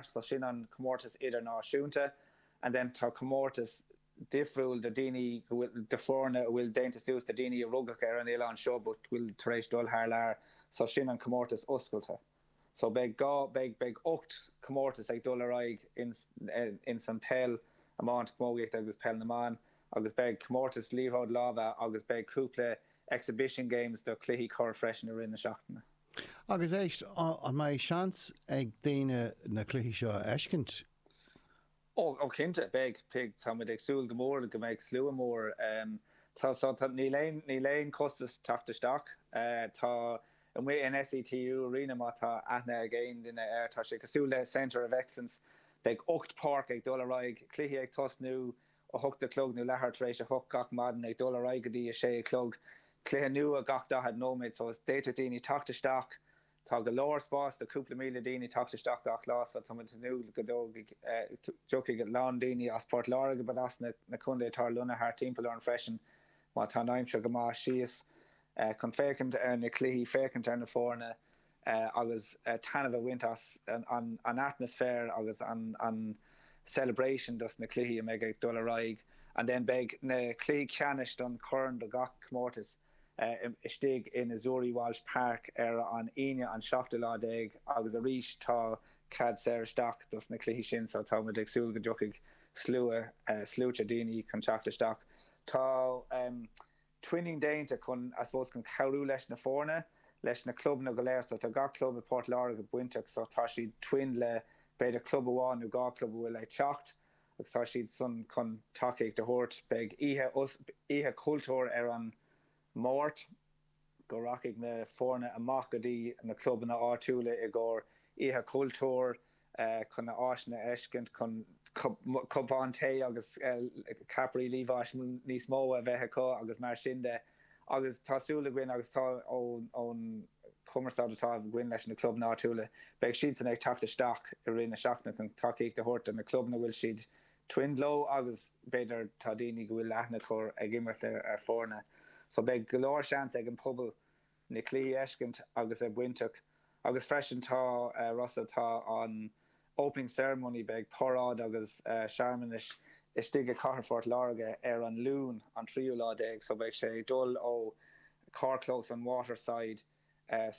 so sin an comórtas idirnáisiúnta and then tá comórtas difriúil do daoine go bhfuil, do foirne a bhfuil déanta suas de daoine a rugadh ar an oileán seo but bhfuil tar éis dul thar lear so sin an comórtas oscailte. So beidh dhá, beidh, beidh ocht comórtas ag dul ar aghaidh ins, ins an peil, iomáint, camógaíocht agus peil na mban agus beidh comórtas liathróid láimhe agus beidh cúpla exhibition games do cluichí corr freisin i rith na seachtaine. Agus éist, an mbeidh seans ag daoine na cluichí seo a fheiscint? Ó cinnte, beidh, beidh. Tá muid ag súil go mór go mbeidh slua mór. Tá, so, tá, níl aon, níl aon chostas teacht isteach. Tá, amuigh in SETU Arena, má tá aithne ag aon duine air, tá sé cosúil le Centre of Excellence. Beidh ocht páirc ag dul ar aghaidh, cluichí ag tosnú. a hocht a chlog nó leathuair tar éis a hocht gach maidin, ag dul ar aghaidh go dtí a sé a chlog, cluiche nua gach daichead nóiméad. So is, d'fhéadfadh daoine teacht isteach, tá go leor spáis do chúpla míle daoine teacht isteach gach lá, so tá muid ag tnúth go dtógfaidh, dtiocfaidh a lán daoine as Port Láirge but as na, na contae atá lonnaithe thart timpeall orainn freisin má tá an aimsir go maith síos chun féachaint ar na cluichí, féachaint ar na foirne. agus taitneamh a bhaint as an atmaisféar agus an celebration dos na cluichí a mbeidh ag dul ar aghaidh and then beidh na cluichí ceannais don Corn do gach comórtas istigh in Azzurri Walsh Park ar an Aoine an seachtú lá déag agus arís tá cead saor isteach dos na cluichí sin so tá muid ag súil go dtiocfaidh slua, sluaite daoine chun teacht isteach tá twinning déanta chun, I suppose, chun cabhrú leis na foirne, leis na clubanna go léir. So tá gach club i bPort Láirge bainteach so tá siad twinned le b'fhéidir club amháin nó dhá club a bhfuil ag teacht agus tá siadsan chun tacaíocht a thabhairt. Beidh oíche, oíche chultúir ar an Máirt go rachaidh na foirne amach go dtí na clubanna áitiúla i gcomhair oíche chultúir. chun na áiseanna a fheiscint chun cupán tae agus ceapairí liamháis níos mó a bheith acu agus mar sin de agus tá súil againn agus tá ón chumarsáid atá againn leis na clubanna áitiúla beidh siadsan ag teacht isteach i rith na seachtaine chun tacaíocht a thabhairt do na clubanna bhfuil siad twinned leo agus b'fhéidir tá daoine go bhfuil aithne acu ag imirt ar foirne so beidh go leor seans ag an pobal na cluichí a fheiscint agus a bheith bainteach agus freisin tá rud, so tá an Opening Ceremony beidh paráid agus searmanais istigh i Cathair Phort Láirge ar an Luan an tríú lá déag so beidh sé ag dul ó carrchlós an Waterside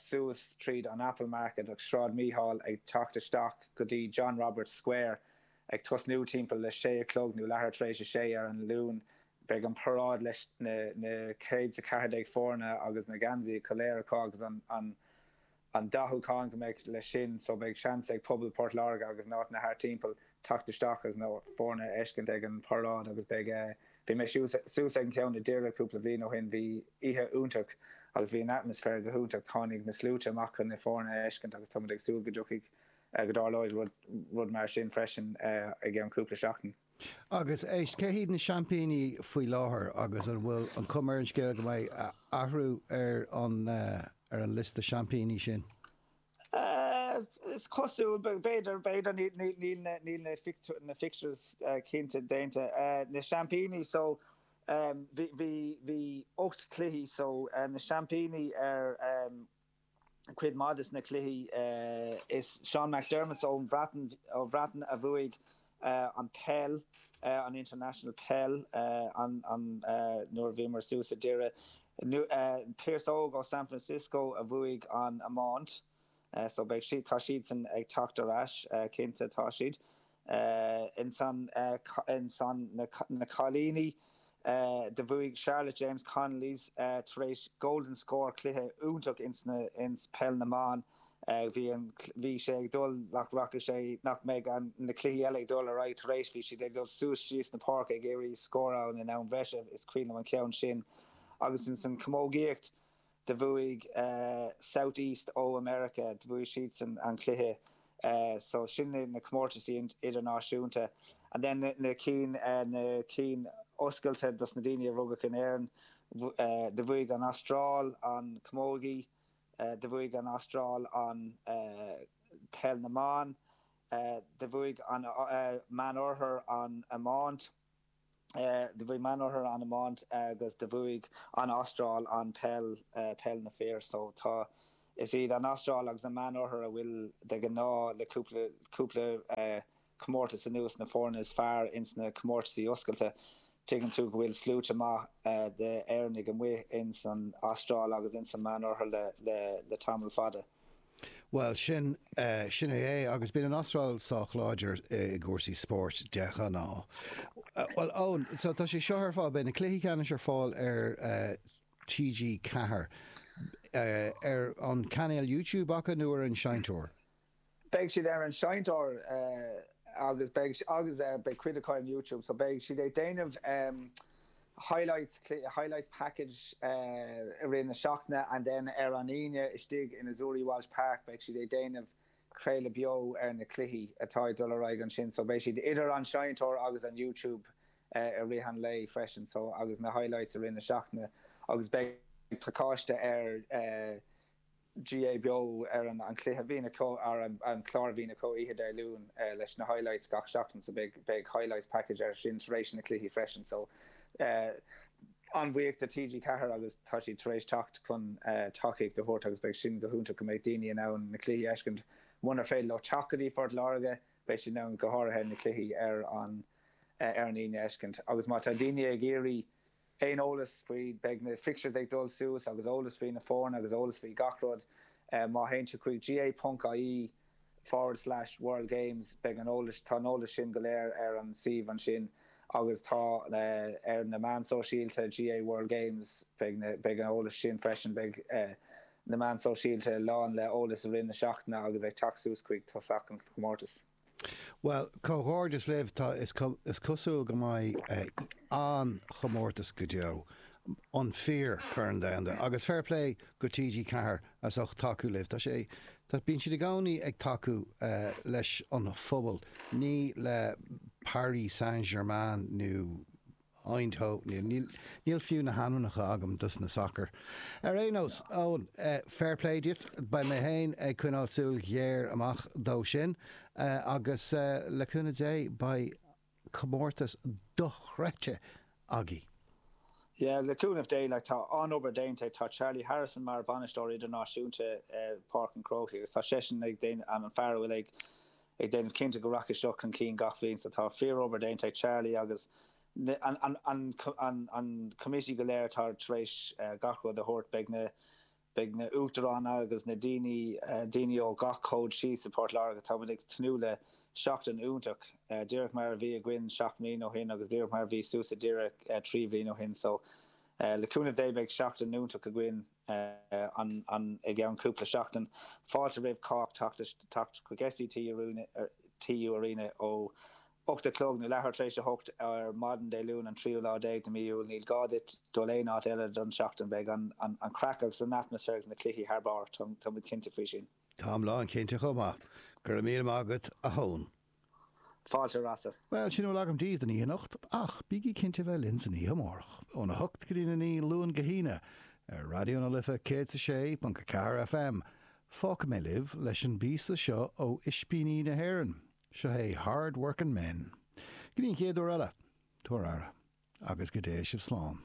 suas tríd an Apple Market agus Sráid Mícheál ag teacht isteach go dtí John Roberts Square Ag tosnú timpeall a sé a chlog, nó leathuair tar éis a sé, ar an Luan, beidh an paráid leis na céad 's a ceathair déag foirne agus na geansaithe go léir acu agus an an an dathúchán go mbeidh leis sin so beidh seans ag pobal Port Láirge agus na háiteanna thart timpeall teacht isteach agus na foirne a fheiscint ag an paráid agus beidh bhí mise suas ag an ceann i nDoire cúpla bhliain ó shin bhí oíche iontach agus bhí an atmaisféar go hiontach tháinig na sluaite amach chun na foirne a fheiscint agus tá muid ag súil go dtiocfaidh go dtarlóidh rud mar sin freisin i gceann cúpla seachtain. Agus éist, cé hiad na seaimpíní faoi láthair agus an bhfuil an chuma ar an scéal go mbeidh athrú ar an liosta seaimpíní sin? Is cosúil, b'fhéidir, b'fhéidir, níl na fixtures cinnte déanta. Na seaimpíní, so bhí ocht gcluiche, so na seaimpíní ar. cuid mhaith de na cluichí. Is Sean McDermotts ón Bhreatain a bhuaigh an peil, an International Peil, nuair a bhíomar suas i nDoire. Pearse Óg ó San Francisco a bhuaigh an iomáint. So beidh siad, tá siadsan ag teacht thar n-ais, cinnte, tá siad. Ansan ins na cailíní do bhuaigh Charlotte James Connolly's tar éis Golden Score cluiche iontach ins peil na mban. Bhí an bhí sé ag dul nach rachaidh sé nach mbeidh an na cluichí eile ag dul ar aghaidh tar éis bhí siad ag dul suas síos na páirce ag iarraidh scór a fháil in am breise. Is cuimhin liom an ceann sin agus insan camógaíocht. de bhuaidh South East ó America, de bhuaidh siadsan an cluiche, so sin na na comórtaisí idirnáisiúnta, and then na na cinn na cinn oscailte dos na daoine a rugadh in Éirinn, de bhuaidh an Astráil an Camógaí, de bhuaidh an Astráil an Peil na mBan, de bhuaidh an Meánoirthear an Iomáint. do bhuaigh an Meánoirthear an iomáint agus do bhuaigh an Astráil an peil, peil na bhfear. So tá, is iad an Astráil agus an Meánoirthear a bhfuil de ghnáth le cúpla, cúpla comórtas anuas na foirne is fearr ins na comórtaisí oscailte. Tuigeann tú go bhfuil sluaite maith de Éireannaigh amuigh ins an Astráil agus ins an Meánoirthear le, le, le tamall fada. Bhuel, sin, sin é, agus bíonn an Astráil sách láidir i gcúrsaí spóirt de ghnáth. Bhuel, Eoin, so tá sé seo ar fáil, beidh na cluichí ceannais ar fáil ar TG4, ar an chainéal YouTube acu nó ar an seinnteoir? Beidh siad ar an seinnteoir agus beidh, agus beidh cuid acu ar YouTube, so beidh siad ag déanamh. highlights, highlights package i rith na seachtaine and then ar an Aoine istigh in Azzurri Walsh Park beidh siad ag déanamh craoladh beo ar na cluichí atá ag dul ar aghaidh ansin so beidh siad idir an seinnteoir agus an YouTube i rith an lae freisin so agus na highlights i rith na seachtaine agus beidh pacáiste ar GAA Beo ar an an cluiche a bhíonn acu, an clár a bhíonn acu oíche Dé Luain leis na highlights gach seachtain so beidh beidh highlights package ar sin tar éis na cluichí freisin so an-bhuíoch de TG4 agus tá siad tar éis teacht chun tacaíocht a thabhairt agus beidh sin go hiontach go mbeidh daoine in ann na cluichí a fheiscint munar féidir leo teacht go dtí Phort Láirge beidh siad in ann go háirithe na cluichí ar an ar an Aoine a fheiscint agus má tá daoine ag iarraidh aon eolas faoi, beidh na fixtures ag dul suas agus eolas faoi na foirne agus eolas faoi gach rud. Má théann tú chuig gaa.ie forward slash world games beidh an eolas, tá an eolas sin go léir ar an suíomh ansin agus tá ar na meáin sóisialta GAA World Games beidh na, beidh an eolas sin freisin, beidh na meáin sóisialta lán le eolas i rith na seachtaine agus ag teacht suas chuig tosach an chomórtais. Bhuel, comhghairdeas libh, tá, is cosúil go mbeidh an-chomórtas go deo, an fíor Corn Domhanda, agus fair play go TG Ceathair as ucht tacú libh, tá sé, bíonn siad i gcónaí ag tacú leis an phobal, ní le Paris Saint Germain nó. Eoin, Ó, níl, níl, níl fiú na hainmneacha agam dos na sacair. Ar aon nós, Eoin, fair play duit, beidh mé féin ag coinneáil súil ghéar amach dó sin agus le cúnamh Dé beidh comórtas dochreidte againn. Yeah, le cúnamh Dé, like, tá an-obair déanta ag, tá Charlie Harrison mar bhainisteoir idirnáisiúnta Páirc an Chrócaigh agus tá seisean ag déanamh, an fear a bhfuil ag, ag déanamh cinnte go rachaidh seo chun cinn gach bliain so Tá fíorobair déanta ag Charlie agus an committee go léir atá tar éis gach rud a thabhairt. Beidh na Beidh na Uachtaráin agus na daoine daoine ó gach cód síos i bPort Láirge. Táimid ag tnúth le seachtain iontach, díreach mar a bhí againn seacht mbliana ó shin agus díreach mar a bhí suas i nDoire trí bhliain ó shin. So le cúnamh Dé beidh seachtain iontach againn. I gceann cúpla seachtain, fáilte roimh chách teacht chuig SETU Arena ó 8 a chlog nó leathuair tar éis a hocht ar maidin Dé Luain an tríú lá déag de mí Iúil. Níl gá duit dul aon áit eile don tseachtain. Beidh an chraic agus an atmaisféar agus na cluichí thar barr, tá muid cinnte faoi sin. Táim lán cinnte chomh maith. Go raibh míle maith agat a Eoin. Fáilte rásaí. Bhuel, sin a bhfuil agam daoibh don oíche anocht, ach bígí cinnte a bheith linn san oíche amárach, óna hocht go dtí'n a naoi, Luan go hAoine, ar Raidió na Life 106.4 FM. Fágfaidh mé libh leis an bpíosa seo ó Ispíní na hÉireann. Seo é Hard Workin' Men. Go dtí an chéad uair eile, tabhair aire, agus go dtéigh sibh slán.